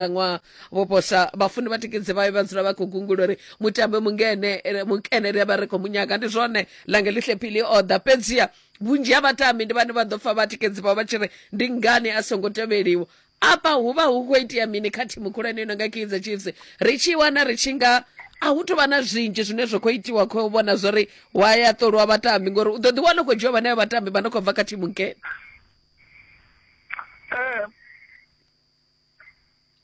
ṅwaha vho posa vhafundi vha tikedze vhayo vha dzula vha khou gungula uri mutambe mungene eh, mukenere vha ri khou munyaga ndi zwone lange lihle phili o ḓa fhedziha vhunzhi ha vhatambi ndi vhane vha ḓo pfa vha tikedzi vhao vha tshi ri ndi ngani a songo tevheliwa afha hu vha hu khou itea mini kha thimu khulwane ino nga kaizer chiefs ri tshi wana ri tshi nga a hu tou vha na zwinzhi zwine zwa khou itiwa khou vhona zwo ri wa ya ṱolwa vhatambi ngori u ḓo ḓi wana u khou dzhiwa vhanevho vhatambi vha no khou bva kha thimu nkene Eh,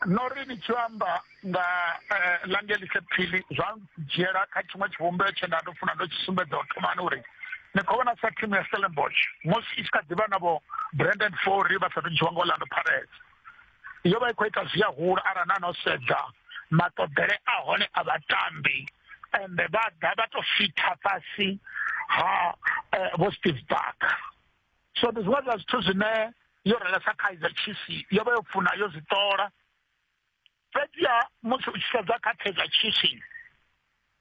no ri ni tshi amba nga eh, langelise phili zwa dzhiela kha tshiṅwe tshivhumbeo tshe nda ndo funa ndo tshi sumbedza u thomani uri ni khou vhona sa thimu ya stellenbosch musi i tshi kha ḓivha navho brandon fory vha sathu dzhiwa nga orlando pirates yo vha i khou ita zwi a hula arali na no sedza maṱoḓele a hone a vhatambi ende vha ḓa vha to fitha fhasi ha eh, vho steve barker so ndi zwiṅwe zwa zwithu zwine yo relesa kaizer chiefs yo vha yo funa yo zwi ṱola fhedziha musi u tshi sedza kha kaizer chiefs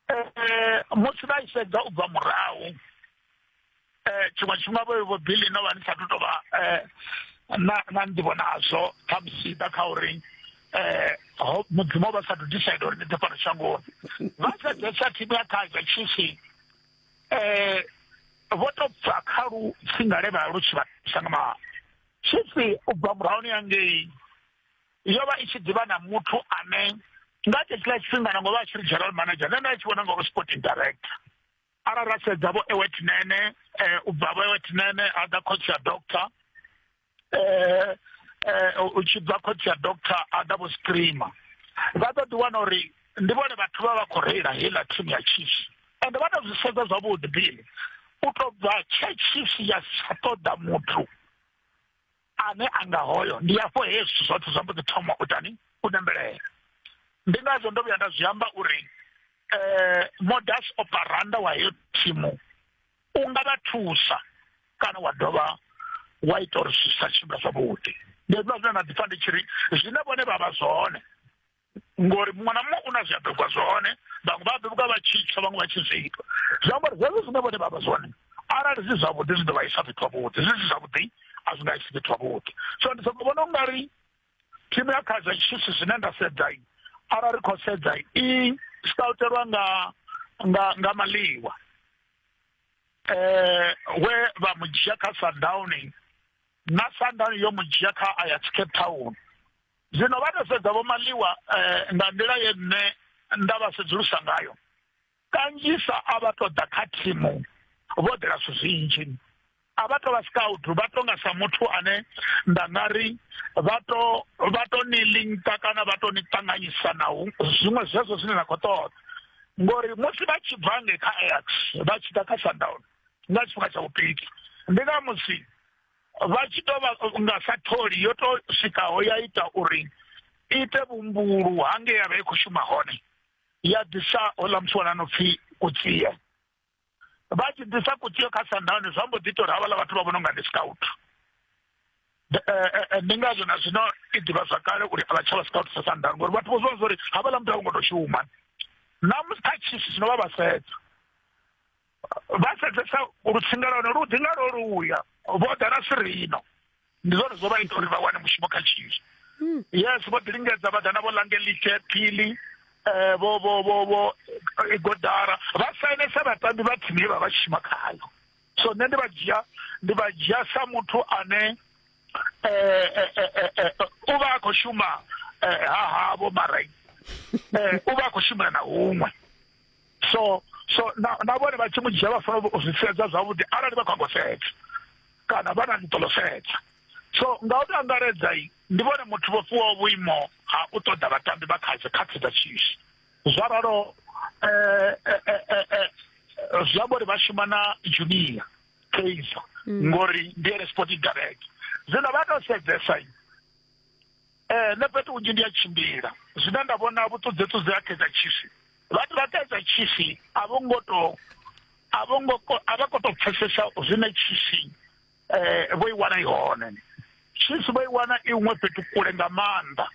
eh, musi vha i sedza u bva murahu eh, tshiṅwe tshifhinga vho vho bili no vha ni sa tu tou vha eh, na na nḓivho nazwo khamusi ḓa kha uri um mudzimu vha sa tu decide uri ni ḓe fhano shangoni vha sedzesa thimu ya kaizer chiefs eh vho to pfa kha lu tsingale vha lu tshi vha thusa nga maanḓa tshipfi u bva murahuni yangei yo vha i tshi ḓivha na muthu ane nga tshetshiḽa tshifhinga nango vha tshi ri general manager nṋe nda tshi vhona ngauri sporting director arali ra sedza vho ewetnene um eh, u bva vho ewetnene a ḓa khotsi ya doctor eh, eh, u tshi bva khotsi ya doctor ada vho screamer vha ḓo ḓiwana uri ndi vhone vhathu vha vha khou reila heiḽa thimu ya chiefs and vha to zwi sedza zwavhuḓi bini u to bva tshe chiefs ya sa ṱoḓa muthu ane a nga hoyo ndi afho he zwithu zwoṱhe zwa mbo ḓi thoma u tani u nembelela ndi ngazwo ndo vhuya nda zwi amba uri um modus operanda wa heyo thimu u nga vha thusa kana wa dovha wa ita uri zwi sa tshimbila zwavhuḓi ndi hezwiḽa zwine na ḓipfa ndi tshi ri zwine vhone vha vha zwone ngori muṅwe na muṅwe u na zwi a bebwa zwone vhaṅwe vha bebwa vha tshi tsha vhaṅwe vha tshi zwi itwa zwi amba uri hezwo zwine vhone vha vha zwone arali zwi zwavhuḓi zwi ḓo vha isa fhethu havhuḓi zwi si zwavhuḓi a zwi nga isi fhethu havhuḓi so ndi soko vhona u nga ri tshi vhea kha zwa tshisi zwine nda sedza arali ri khou sedza i staltelwa nga nga nga maliwa eh we vha mu dzhia kha Sundowning na Sundown yo mu dzhia kha Ajax Cape Town zwino vha to sedza vho maliwa eh, nga nḓila ye nṋe nda vha sedzulusa ngayo kanzhisa a vha tou ḓa kha thimu vho ḓela zwithu zwinzhi a vha tou vha scout vha tou nga sa muthu ane nda nga ri vha to vha to ni linka kana vha to ni ṱanganyisa na zwiṅwe zwezwo zwine na khou ṱoḓa ngori musi vha tshi bva nge kha ax vha tshi ḓa kha sundown nga tshifhinga tsha vhupiki ndi nga musi vha tshi tou vha nga sa tholi yo tou swikaho ya ita uri ite vhumbulu hange ya vha i khou shuma hone ya ḓisa ola muthu wana no pfhi kutsie vha tshi ḓisa kutsie kha sandani zwa mbo ḓi tori havhala vhathu vha vhona unga ndi scout eh, eh, eh, ndi ngazwo na zwino i ḓivha zwa kale uri a vha tsha vha scout sa sandani ngori vhathu vho zwiwa zwa uri havhala muthu a vho ngo to shuma na musi kha chiefs zwino vha vha sedza vha sedzesa lutsinga lwa hone lu ḓi nga lwo luya vho ḓa na sirino ndi zwone zwo vha ita uri vha wane mushumo kha tshinzhi hmm. yes vho ḓi lingedza vha ḓa na vho langelike phili um vho vho vho vho igodara eh, vha sainesa vhatambi vha thimu ye vha vha shuma khayo so nṋe ndi vha dzhia ndi vha dzhia sa muthu ane um u vha a khou shuma ha havho mara um u vha a khou shumela na huṅwe so so na na vhone vha tshi mu dzhia vha fanela u zwi sedza zwavhuḓi arali vha khou sedza kana vha na ḽiṱolo sedza so nga u tou angaredza i ndi vhone muthu vho fhiwaho vhuimo ha u ṱoḓa vhatambi vha kha dzikhathi dza tshishi zwa ralo eh, eh, eh, zwi amba uri vha shuma na junior kaizer mm. ngori ndi ene sporting direct zwino vha tou sedzesa i Eh, nṋe fhethu hunzhi ndi a tshimbila zwine nda vhona vhuṱudzeṱudze ha kaizer chiefs vhathu vha kaizer chiefs a vho ngo to a vho ngo ko- a vha ko to pfesesa zwine chiefs eh vho i wana i hone chiefs vho i wana i huṅwe fhethu kule nga maanḓa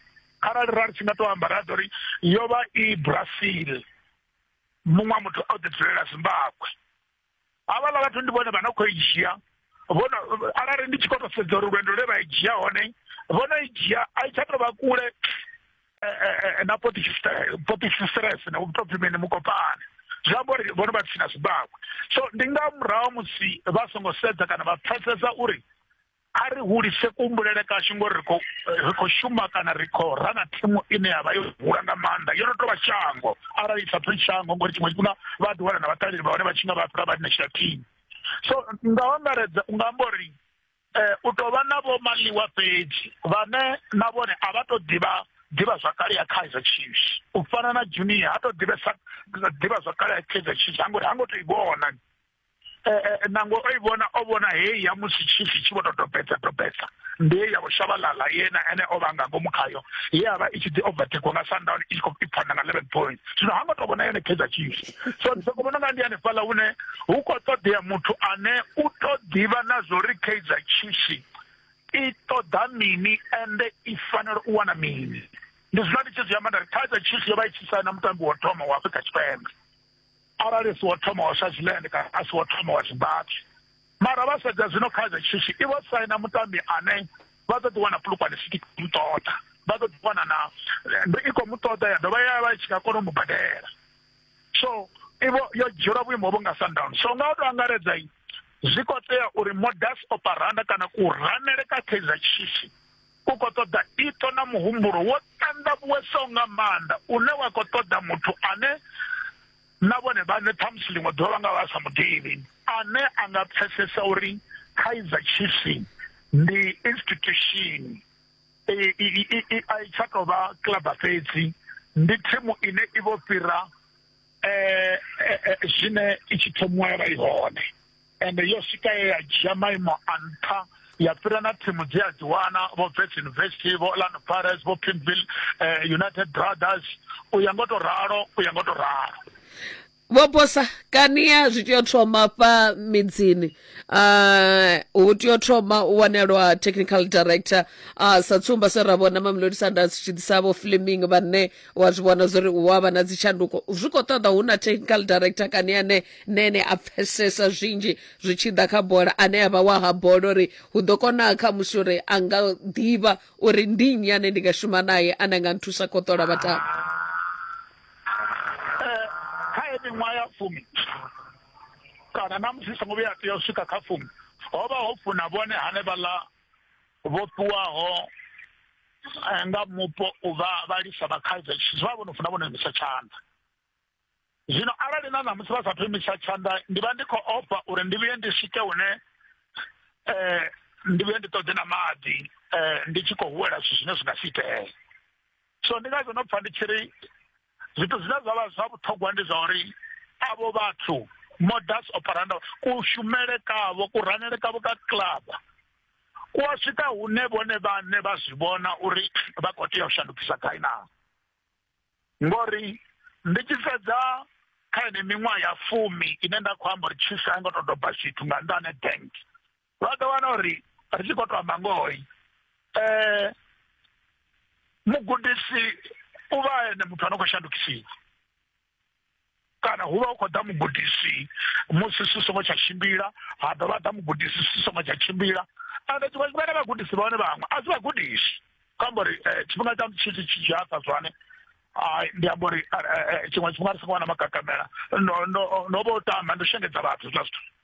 kharali ra ri tshi nga to amba ra ḓo ri yo vha i brazil muṅwe wa muthu a u ḓi dzulela zimbabwe havha ḽa vhathu ndi vhone vha no khou i dzhia vhono arali ndi tshi khou to sedza uri lwendo lwe vha i dzhia hone vhono i dzhia a i tsha to vha kule eh, eh, eh, na potistress na vhutopfi mene mukopane zwi amba uri vhono vha tsina zwibakwe so ndi nga murahu musi vha songo sedza kana vha pfesesa uri a ri hulise kuhumbulele kashu ngori ri khou ri khou shuma kana ri khou ra na thimu ine ya vha yo hula nga maanḓa yo no tou vha shango arali i sa pfhi shango ngori tshiṅwe tshifhinga vha ḓi wana na vhaṱaleli vha hone vha tshi nga vha fhira vha national team so nga u angaredza u nga amba uri um u tou vha na vho maliwa fhedzi vhane na vhone a vha tou ḓivha ḓivha zwakale ya kaizer chiefs u fana na junior ha tou ḓivhesa ḓivha zwakale ya kaizer chiefs ha ngo ri ha ngo tou i vhona nangwe o i vhona o vhona heyi ya musi tshifi tshi vho to topedza topedza ndi ye ya vho shavhalala yena ene o vha nga ngomu khayo ye ya vha i tshi ḓi overtakewa nga sundown i tshi khou ipfana nga eleven point zwino ha ngo to vhona yone kaizer chiefs so ndi soko vhona nga ndi hanefhaḽa hune hu khou ṱoḓea muthu ane u to ḓivha na zwo ri kaizer chiefs i ṱoḓa mini ende i fanela u wana mini ndi zwino ndi tshi zwi amba nda ri kaizer chiefs yo vha i tshi saina mutambi wa thoma wa afrika tshipembe arali si wo thoma wa swaziland kana a si wo thoma wa zimbabwe mara vha sedza zwino kha dza tshishi i vho saina mutambi ane vha ḓo ḓi wana pulukwane siki muṱoḓa vha ḓo ḓi wana na ndo i khou muṱoḓa ya dovha ya vha i tshi nga kona u mu badela so ivo yo dzhielwa vhuimo vho nga sundown so nga u to angaredza zwi khou tea uri modus operanda kana ku ranele ka kaizer chiefs U khou ṱoḓa iṱo na muhumbulo wo ṱanḓavhuwesaho nga maanḓa une wa khou ṱoḓa muthu ane na vhone vhaṋe ṱhamusi ḽiṅwe ḓuvha vha nga vha sa mu ḓivhi, ane a nga pfesesa uri Kaizer Chiefs ndi institution, a i tsha tou vha kilaba fhedzi, ndi thimu ine i vho fhira zwine i tshi thomiwa ya vha i hone. ende yo swika ye ya dzhia maimo a nṱha ya fhira na thimu dzi a dzi wana vho vets university vho orlando pirates vho pinville eh, united brothers u ya ngo to ralo u ya ngo to ralo vho bosa kania zwi tea u thoma fha midzini uh, hu tea u thoma u wanelwa technical director uh, sa tsumba se ra vhona mamelodi sunders tshi ḓisa vho fleming vhane wa zwi vhona zwori hu avha na dzitshanduko zwi khou ṱoḓa hu na technical director kani ane nene a pfesesa zwinzhi zwi tshi ḓa kha bola ane avha wa ha bola uri hu ḓo kona kha musi uri a nga ḓivha uri ndi nnyi ane ndi nga shuma naye ane a nga nthusa khou ṱola vhatambi eh, kha ye miṅwaha ya fumi kana na musi songo vhuya tea u swika kha fumi ho vha ho funa vhone hanevhaḽa vhofhiwaho eh, nga mupo u vha vhalisa vha kaizer chiefs vha vhono funa vhono imisa tshanḓa zwino arali na ṋamusi vha sathu imisa tshanḓa ndi vha ndi khou ofha uri ndi vhuye ndi swike hune um ndi vhuye ndi ṱoḓe na maḓi um ndi tshi khou huwela zwithu zwine zwi nga si itee so ndi ngazwo no pfha ndi tshi ri zwithu zwine zwa vha zwa vhuṱhogwa ndi zwa uri avho vhathu modus operandi kushumele kavho kuranele kavho ka club ku a swika hune vhone vhane vha zwi vhona uri vha khou tea u shandukisa gai na ngori ndi tshi sedza kha ine miṅwaha ya fumi ine nda khou amba uri tshisa a ngo to doba zwithu nga nḓa ane bank vha ḓo wana uri ri tshi khou to amba ngoi um mugudisi u vha ene muthu a no khou shandukisiwa kana hu vha hu khou ḓa mugudisi musi si songo tsha tshimbila ha dovha ḓa mugudisi si songo tsha tshimbila ande tshiṅwe tshifhinga na vhagudisi vha hone vhaṅwe a si vhagudisi kho amba uri eh, tshifhinga tsha tshitshi tshi dzhia sa zwane ndi amba uri eh, eh, tshiṅwe tshifhinga ri songo wana magagamela no vha u tama ndo shengedza vhathu zwa zwithu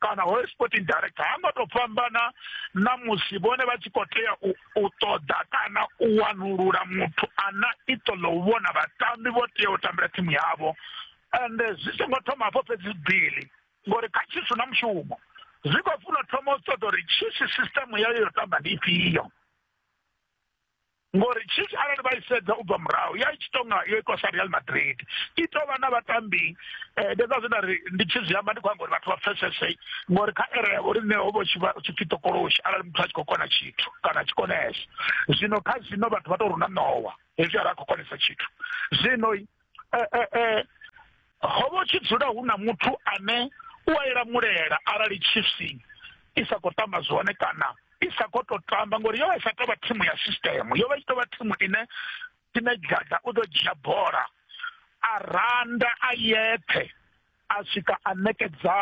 kana hoyo sporting director ha ngo to fhambana na musi vhone vha tshi khou tea u ṱoḓa kana u wanulula muthu ana iṱo ḽo u vhona vhatambi vho tea u tambela thimu yavho ende zwi songo thoma hafho fhedzi bili ngori kha tshisu na mushumo zwi khou funa thoma u ṱoḓa uri tshisu system yayo yo tamba ndi ifhio ngori chiefs arali vha i sedza u bva murahu ya i tshi tonga yo itwa sa real madrid i tou vha na vhatambi um ndi zwa zwine ri ndi tshi zwi amba ndi khou amba uri vhathu vha pfesese ngori kha ere yavho rine ho vha tshi pfi tokoloshi arali muthu a tshi khou kona tshithu kana a tshi konesa zwino kha zwino vhathu vha tou runa ṋowa hezwi ara a khou konesa tshithu zwino ho vha tshi dzula hu na muthu ane u a ila mulela arali chiefs i sa khou tamba zwone kana i sa khou tou tamba ngori yo vha i sa tou vha thimu ya system yo vha i tshi tou vha thimu ine ine dada u ḓo dzhia bola a randa a yeṱhe a swika a ṋekedza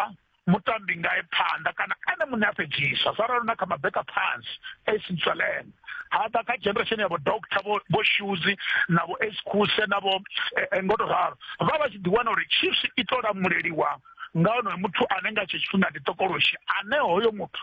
mutambi ngae phanḓa kana ene muṋe a fhedzisa zwa ralo na kha mabeka phansi ace ntswelene haḓa kha generation yavho doctor vho shuzi na vho ace khuse na vho eh, eh, ngoto ralo vha vha tshi ḓiwana uri chiefs i to lamuleliwa nga onoyo muthu ane nga tshe tshifhinga ndi tokoloshi ane hoyo muthu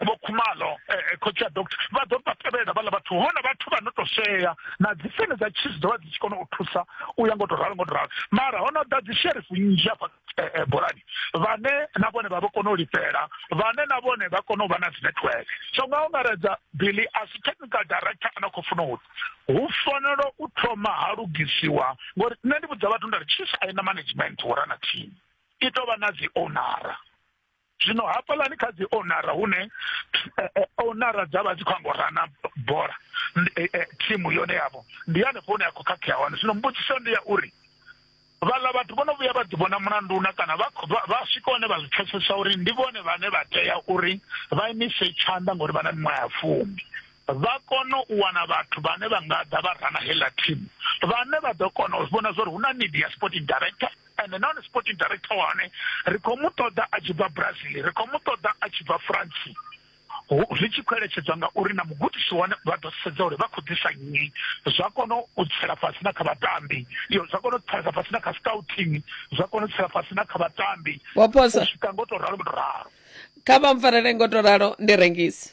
vho khumalo eh, eh, khotsi a doctor vha ḓo vha tevhelela vhala vhathu hone vhathu vha no to shea na dzi fene dza chiefs ḓovha dzi tshi kona u thusa u ya ngo to ralo ngo to ralo mara hono ḓa dzi sheriff nnzhi afha eh, bolani vhane na vhone vha vho kona u lifhela vhane na vhone vha kona u vha na dzi network so nga ungaredza billy as technical director ana khou funa u hu fanela u thoma ha lugisiwa ngori nṋe ndi vhudza vhathu nda ri chiefs a i na management wo rana team i tovha na dzi ownara zwino hafhaḽani kha dzi onara hune eh, eh, onara dza vha dzi khou amba rana bola eh, thimu yone yavho ndi hanefho hune ya khou khakhea hone zwino mbudziso ndi ya uri vhaḽa vhathu vho no vhuya vha ḓivhona mulanduna kana vha swika hone vha zwi pfesesa uri ndi vhone vhane vha tea uri vha imise tshanḓa ngori vha na miṅwaha ya fumi vha kone u wana vhathu vhane vha nga ḓa vha rana heḽa thimu vhane vha ḓo kona u vhona zwa uri hu na need ya sporting director and nahone sporting director wa hone ri khou mu ṱoḓa a tshi bva brazil ri khou mu ṱoḓa a tshi bva france zwi tshi khou eletshedzwa ngauri na mugudisi wane vha ḓo sedza uri vha khou ḓisa nnyi zwa kona u tsela fhasi na kha vhatambi iyo zwa kona u tsela fhasi na kha scouting zwa kona u tsela fhasi na kha vhatambi u swika ngo to ralo ngo to ralo kha vha mpfarele ngo to ralo ndi rengisi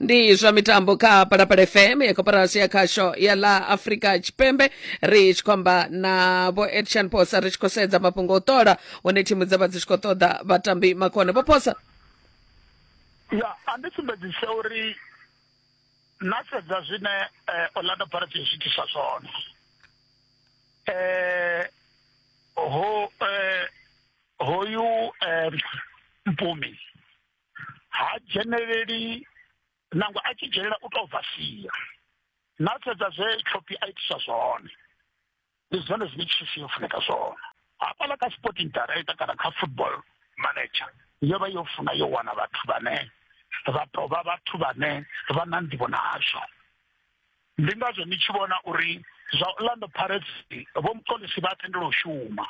ndi zwa mitambo kha palapala fm ya koporasi ya khasho ya la afrika tshipembe ri tshi khou amba na vho edshan posa ri tshi khou sedza mafhungo o ṱola hune thimu dza vha dzi tshi khou ṱoḓa vhatambi makone vho posa ya a ndi sumbedzise uri na sedza zwine eh, orlando pirates ya zwiitisa zwone eh, ho eh, hoyu eh, mpumi ha dzheneleli nangwe a tshi dzhenelela u tou bva sia na sedza zwe tshopi a itisa zwone ndi zwone zwine chief yo funeka zwone hafhaḽa kha sporting director kana kha football manager yo vha yo funa yo wana vhathu vhane vha tovha vhathu vhane vha na nḓivho nazwo ndi ngazwo ni tshi vhona uri zwa orlando pirates vho mukolisi vha tendela u shuma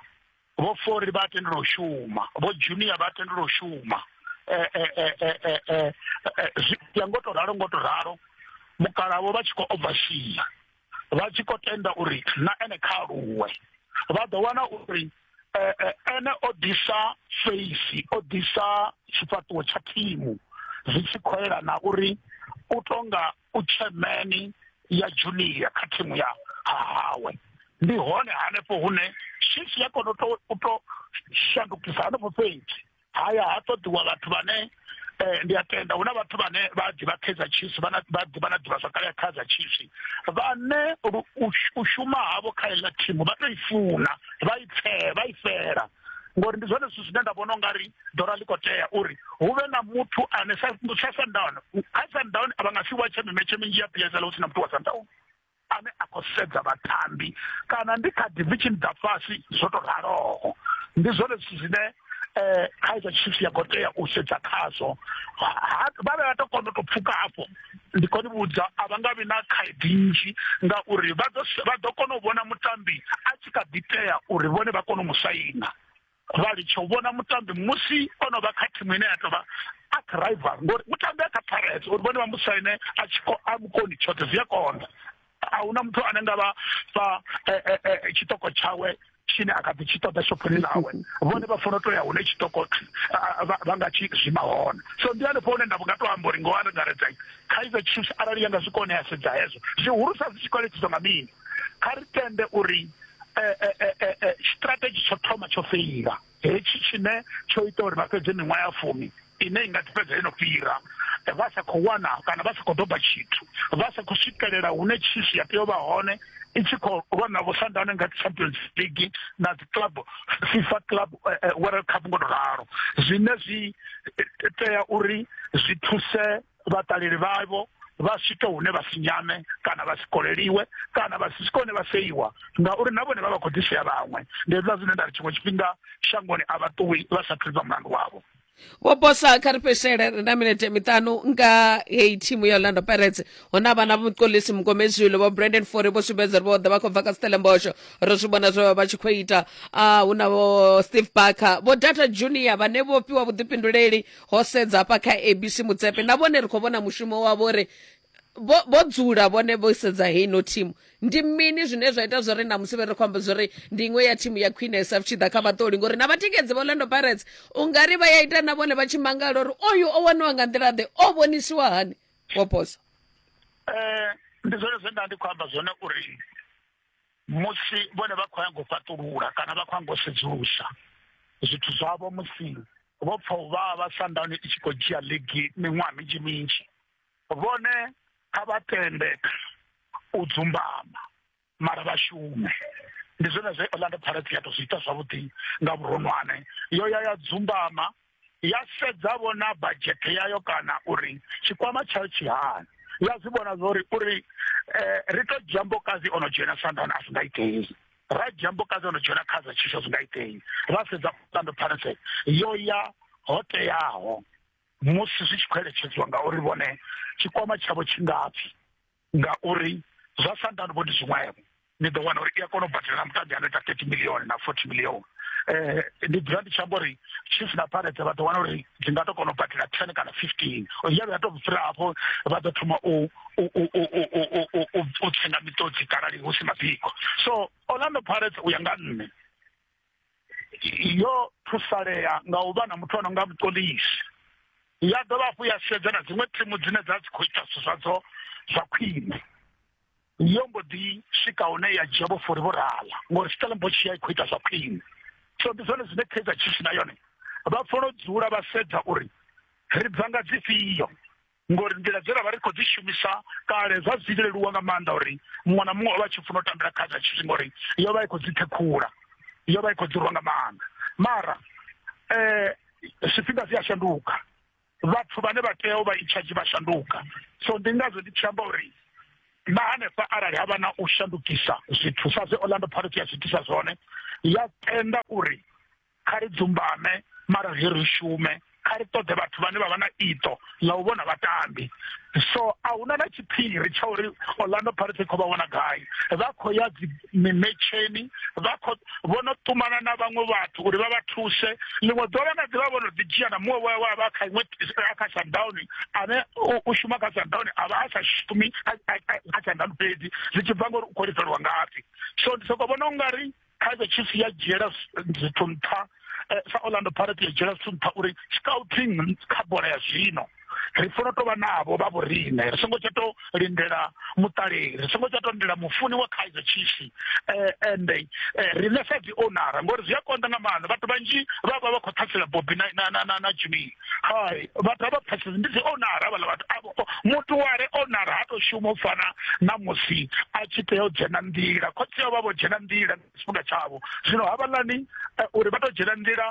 vho fori vha tendela u shuma vho junior vha tendela u shuma eh, eh, eh, zwi ya ngo to ralo ngo to ralo mukalavo vha tshi khou obvashia vha tshi khou tenda uri na ene kha aluwe vha ḓo wana uri ene o ḓisa feisi o ḓisa tshifhaṱuwo tsha thimu zwi tshi khou elana uri u tonga u tshemeni ya junior kha thimu ya hawe ndi hone hanefho hune shishi ya kona u to shandukisa hanefho fhedzi haya ha ṱoḓiwa vhathu vhane um ndi a tenda hu na vhathu vhane vha ḓivha kaizer chiefs vha na ḓivha zwakale ya kaizer chiefs vhane u shuma havho kha iḽa thimu vha to i funa vha i pfee vha i fela ngori ndi zwone zwithu zwine nda vhona ungari dora ḽi khou tea uri hu vhe na muthu ane sa sundown kha sundown a vha nga si watshe mimetshe minzhi ya psl hu si na muthu wa sundown ane a khou sedza vhatambi kana ndi kha division dza fhasi zwo to raloho ndi zwone zwithu zwine um kha iza tshithu ya khou tea u sedza khazwo vha vhe vha to kona u to pfuka hafho ndi khou ni vhudza a vha nga vhi na khaedu nnzhi ngauri vha ḓo vha ḓo kona u vhona mutambi a tshi kha ḓi tea uri vhone vha kone u mu saina vha litsha u vhona mutambi musi o no vha kha thimu ine ya tou vha a kha rival ngori mutambi a kha pirates uri vhone vha mu saine a tshi a mukoni tshoṱhe zwi a konḓa a hu na muthu ane nga vha fha eh, eh, eh, tshiṱoko tshawe tshine a kha ḓi tshi ṱoḓa shophoni ḽawe vhone vha funa u tou ya hune tshiṱoko vha nga tshi zwima hone so ndi hanefho hune nda nga tou amba uri ngoho angaredza kaizer chiefs arali ya nga zwi kone ya sedza hezwo zwihulusa zwi tshi kwaletsiswa nga mini kha ri tende uri strategy tsho thoma tsho feila hetshi tshine tsho ita uri vha fhedze miṅwaha ya fumi ine i nga ḓi fhedza yo no fhira vha sa khou wana kana vha sa khou doba tshithu vha sa khou swikelela hune tshishi ya tea u vha hone i tshi khou lwa na vhusandane nga champions league na dzi club fifa club eh, eh, world cup ngo to ralo zwine zwi eh, tea uri zwi thuse vhaṱaleli vhavho vha swike hune vha si nyame kana vha si koleliwe kana vha si swike hune vha seiwa ngauri na vhone vha vha khou ḓisea vhaṅwe ndi hezwiḽa zwine nda ri tshiṅwe tshifhinga shangoni a vha ṱuwi vha sa thulisa mulandu wavho vho bosa kha ri fhedzisele ri na minete miṱanu nga heyi thimu ya orlando pirates hu na vhana mukolisi mukomezwilo vho brandon fore vho sumbedza uri vho ḓa vha khou bva kha stellenbosho ro zwi vhona zwe vha vha tshi khou ita a hu na vho steve barker vho data junior vhane vho fhiwa vhuḓifhinduleli ho sedza hafha kha abc mutsepe na vhone ri khou vhona mushumo wavho uri vho vho dzula vhone vho sedza heino thimu ndi mini zwine zwa ita zwori na musi vhe ri khou amba zwori ndi iṅwe ya thimu ya khwinesa zwi tshi ḓa kha vhaṱoli ngori na vhatikedzi vha orlando pirates u nga ri vha ya ita na vhone vha tshi mangala uri oyu o waniwa nga nḓila ḓe o vhonisiwa hani wo posa um ndi zwone zwe nda ndi khou amba zwone uri musi vhone vha khou nyanga u fhaṱulula kana vha khou nyanga u sedzulusa zwithu zwavho musi vho pfa u vhavha sandani i tshi khou dzhia ligi miṅwaha minzhi minzhi vhone kha vha tende u dzumbama mara vha shume ndi zwone zwe orlando pirates ya to zwi ita zwavhuḓi nga vhuronwane yo ya ya dzumbama ya sedza vhona badzhethe yayo kana uri tshikwama tshayo tshi hani ya zwi vhona zwori uri eh, ri to dzhia mbokazi ono dzhena sandana a si nga itei ra dzhia mbokazi ono dzhena kha dza tshisho zwi nga itei ra sedza ṱando phanese yo ya ho teaho musi zwi tshi khou eletshedziwa ngauri vhone tshikwama tshavho tshi ngapfi ngauri zwa sandano vho ndi zwiṅwevho ni ḓo wana uri i a kona u badela na mutambi ano ita thirty million na forty million um eh, ndi dzula ndi tshi amba uri chief na parete vha ḓo wana uri dzi nga to kona u badela ten kana fifteen ya vhuya to fhira hafho vha ḓo thoma u tsenga miṱodzi karali hu si mabiko so orlando parete u ya nga nṋe yo thusalea nga u vha na muthu ano nga vhuṱolisi ya dovha hafhu ya sedza na dziṅwe thimu dzine dza dzi khou ita zwithu zwadzo zwa khwine yo mbo ḓi swika hune ya dzhia vhofori vho rala ngori stellenbosch ya i khou ita zwa khwine so ndi zwone zwine kaizer chiefs na yone vha fanela u dzula vha sedza uri ri bva nga dzifhio ngori nḓila dze ra vha ri khou dzi shumisa kale zwa zwi tshi leluwa nga maanḓa uri muṅwe na muṅwe o vha a tshi funa u tambela kha dza tshithu ngori yo vha i khou dzi ṱhekhula yo vha i khou dzi rwa nga maanḓa mara um zwifhinga zwi a shanduka vhathu vhane vha tea u vha itshadzhi vha shanduka so ndi ngazwo ndi tshi amba uri na hanefha arali ha vha na u shandukisa zwithu sa zwe orlando pirates ya zwi itisa zwone ya tenda uri kha ri dzumbame mara zwi ri shume kha ri ṱoḓe vhathu vhane vha vha na iṱo ḽa u vhona vhatambi so a huna na tshiphiri tsha uri orlando pirates kho vha wana gai vha khou ya mimetsheni vha khou vho no ṱumana na vhaṅwe vhathu uri vha vha thuse ḽiṅwe ḓuvha na ḓivha vho no ḓi dzhia na muṅwe wa vha kha iṅwe a kha sundown ane u shuma kha sundown a vha a sa shumi kha sundown fhedzi zwi tshi bva ngori u khou lifelwa ngafhi so ndi soko vhona u nga ri kaizer chiefs ya dzhiela zwithu nṱha eh, sa orlando pirate ya dzhiela zwithu nṱha uri scouting kha bola ya zwino ri funa tovha navho vha vhorine ri songo tsha to lindela muṱaleli ri songo tsha to lindela mufuni wa kaizer chiefs eh, ende eh, riṋe sa dzi onara ngori zwi a konḓa nga maanḓa vhathu vhanzhi vha vha vha khou ṱhasela bobi na na na na jimmy hai vhathu a vha pfesesi ndi dzi onara vhala vhathu avho muthu ware onara ha to shuma u fana na musi a tshi tea u dzhena nḓila khotsi yo vha vho dzhena nḓila tshifhinga tshavho zwino havhaḽani eh, uri vha to dzhena nḓila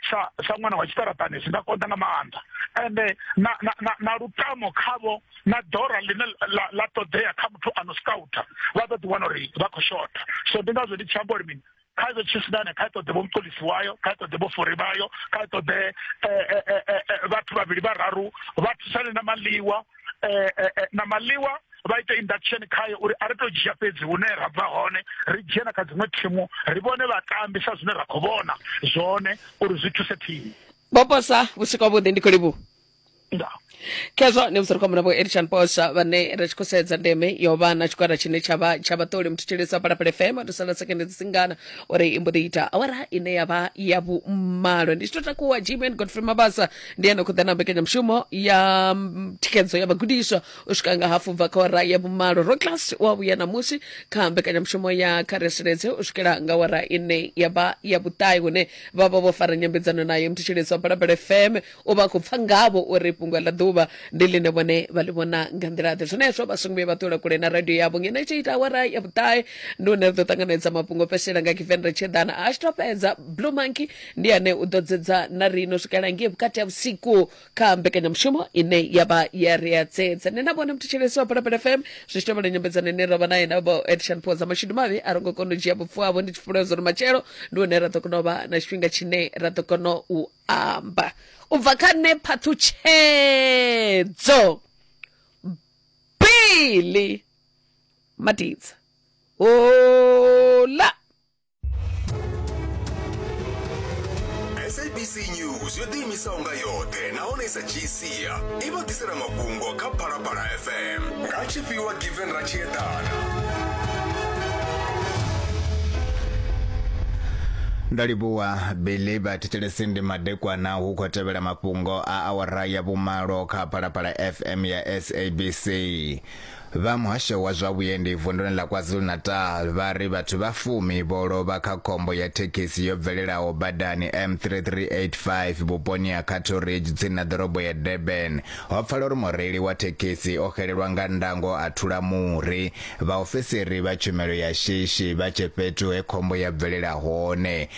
sa sa ṅwana wa tshiṱaraṱani zwi nga konḓa nga maanḓa ende na na na, na lutamo khavho na dora ḽine la, la ṱoḓea kha muthu ano scouter vha ḓo ḓi wana uri vha khou shotha so ndi ngazwo ndi tshi amba uri mini kha ṱoḓe tshisidane kha ṱoḓe vho muṱolisi wayo kha ṱoḓe vho fori vhayo kha ṱoḓe eh, eh, eh, vhathu vhavhili vhararu vha thusane na maliwa na maliwa vha ita induction khaye uri a ri to dzhia fhedzi hune ra bva hone ri dzhie na kha dziṅwe thimu ri vhone vhatambi sa zwine ra khou vhona zwone uri zwi thuse thimu boposa vhusiku vhuḓi ndi khou livhuwa ndaa khezwo ni vhudziri khombo vho elishan posa vhane ri tshi khou sedza ndeme yo vha na tshigwada tshine tsha vha tsha vhaṱoli muthu tshelisa phalaphala fm ri sala sekende dzi singana uri i mbo ḓi ita awara ine ya vha ya vhumalo ndi tshi tou takuwa gman godfrey mabasa ndi ene khou ḓa na mbekanyamushumo ya mm, thikhedzo ya vhagudiswa u swika nga hafu bva kha awara ya vhumalo ro class wa vhuya ṋamusi kha mbekanyamushumo ya kha reseledze u swikela nga awara ine ya vha ya vhuṱae hune vha vha vho fara nyambedzano naye muthu tshelisa phalaphala fm u vha khou pfa ngavho uri fhungo ḽa ḓuvha ndi ḽine vhone vha ḽi vhona nga nḓila-ḓe zwenezwo vha songo vhuya vha ṱula kule na radio yavho ngeno itshi ita awara ya vhuṱahe ndi hune ri ḓo ṱanganedza mafhungo o fhedzisela nga kiveni ri tshi ḓana a tshi to fhedza blue monkey ndi ane u ḓo dzedza na rino swikela ngei vhukati ha vhusiku kha mbekanyamushumo ine ya vha ya ri a dzedza nṋe na vhone muthetsheleso wa phalaphala fm zwi tshi tovhela nyambedzano ine ro vha naye na vho edishan phoza mashudu mavhi a ro ngo kona u dzhia vhupfu havho ndi tshi fhulwa zwo ri matshelo ndi hune ra ḓo kona u vha na tshifhinga tshine ra ḓo kona u amba u bva kha nṋe phaṱhutshedzo bili madidza hola sabc news yo ḓiimisaho nga yoṱhe nahone sa gc sia i vha ḓisela mafhungo kha phalaphala fm nga tshifhiwa given ra tshi eḓana ndo livhuwa billy vha thetshelesi ndi madekwana hu khou tevhela mafhungo a awara ya vhumalo kha phalaphala fm ya sabc Vha muhasho wa zwa vhuendi vunduni ḽa KwaZulu-Natal vha ri vhathu vha fumi vho lovha kha khombo ya thekhisi yo bvelelaho badani M3385 vhuponi ha Cato Ridge tsini na ḓorobo ya Durban. Ho pfala uri mureili wa thekhisi o xelelwa nga ndango a thula muri. Vhaofisiri vha tshumelo ya shishi vha tshe fhethu he khombo ya bvelela hone.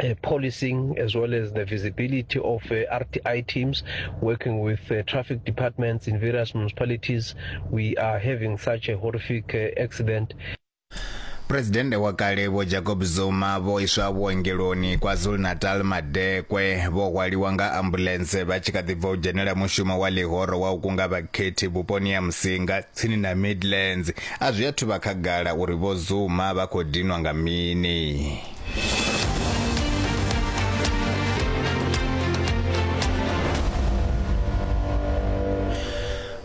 uh, policing as well as the visibility of uh, RTI teams working with uh, traffic departments in various municipalities. We are having such a horrific uh, accident. purezidennde wa kale vho jacob zuma vho iswa vhuongeloni kwazulu-natal madekwe vho hwaliwa nga ambulense vha tshi kha ḓi bva u dzhenela mushumo wa ḽihoro wa u kunga vhakhethi vhuponi ya musinga tsini na midlands a zwi athu vha khagala uri vho zuma vha khou dinwa nga mini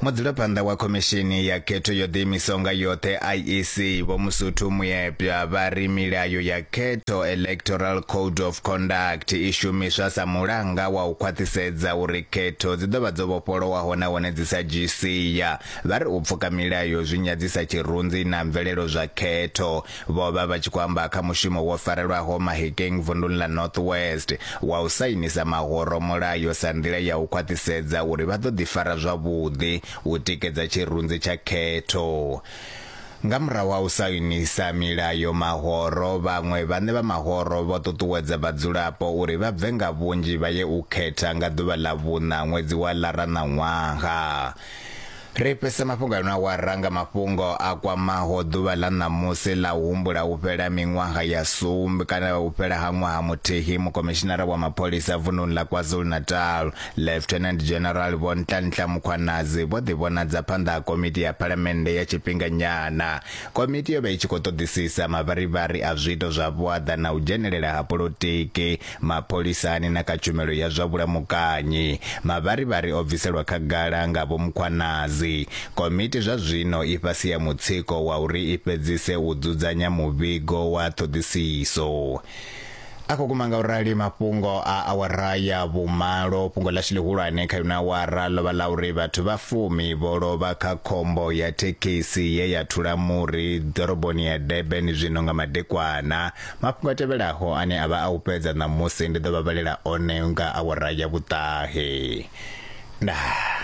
mudzulaphanḓa wa khomishini ya khetho yo ḓiimisaho nga yoṱhe iec vho musuthu muyepya vha ri milayo ya khetho electoral code of conduct i shumiswa sa mulanga wa u khwaṱhisedza uri khetho dzi ḓo vha dzo vhofholowaho nahone dzi sa dzhii sia vha ri u pfuka milayo zwi nyadzisa tshirunzi na mvelelo zwa khetho vho vha vha tshi khou amba kha mushumo wo farelwaho Mahikeng vunḓuni ḽa North West wa u sainisa mahoro mulayo sa nḓila ya u khwaṱhisedza uri vha ḓo ḓifara zwavhuḓi u tikedza tshirunzi tsha khetho. Nga murahu ha u sainisa milayo mahoro, vhaṅwe vhaṋe vha mahoro vho ṱuṱuwedza vhadzulapo uri vha bve nga vhunzhi vha ye u khetha nga ḓuvha ḽa vhuṋa ṅwedzi wa Lara na ṅwaha. Ri fhisa mafhungo a no awara nga mafhungo a kwamaho ḓuvha ḽa ṋamusi ḽa u humbula u fhela miṅwaha ya sumbe kana u fhela ha ṅwaha muthihi mukomishinara wa mapholisa vununi ḽa KwaZulu-Natal, Lieutenant General Vho Nhlanhla Mkhwanazi vho ḓivhonadza phanḓa ha komiti ya Phalamennde ya tshifhinganyana. Komiti yo vha i tshi khou ṱoḓisisa mavharivhari a zwiito zwa vhuaḓa na u dzhenelela ha polotiki mapholisani na kha tshumelo ya zwa vhulamukanyi. Mavharivhari o bviselwa khagala nga Vho Mkhwanazi. Komiti zwa zwino i fhasi ha mutsiko wa uri i fhedzise u dzudzanya muvhigo wa ṱhoḓisiso. A khou guma ngaurali mafhungo a awara ya vhumalo. Fhungo ḽashu ḽihulwane kha ino awara ḽo vha ḽa uri vhathu vha fumi vho lovha kha khombo ya thekhisi ye ya thula muri ḓoroboni ya Durban zwino nga madekwana. mafhungo a tevhelaho ane a vha a u fhedza ṋamusi ndi ḓo vha vhalela one nga awara ya vhuṱahe ndaa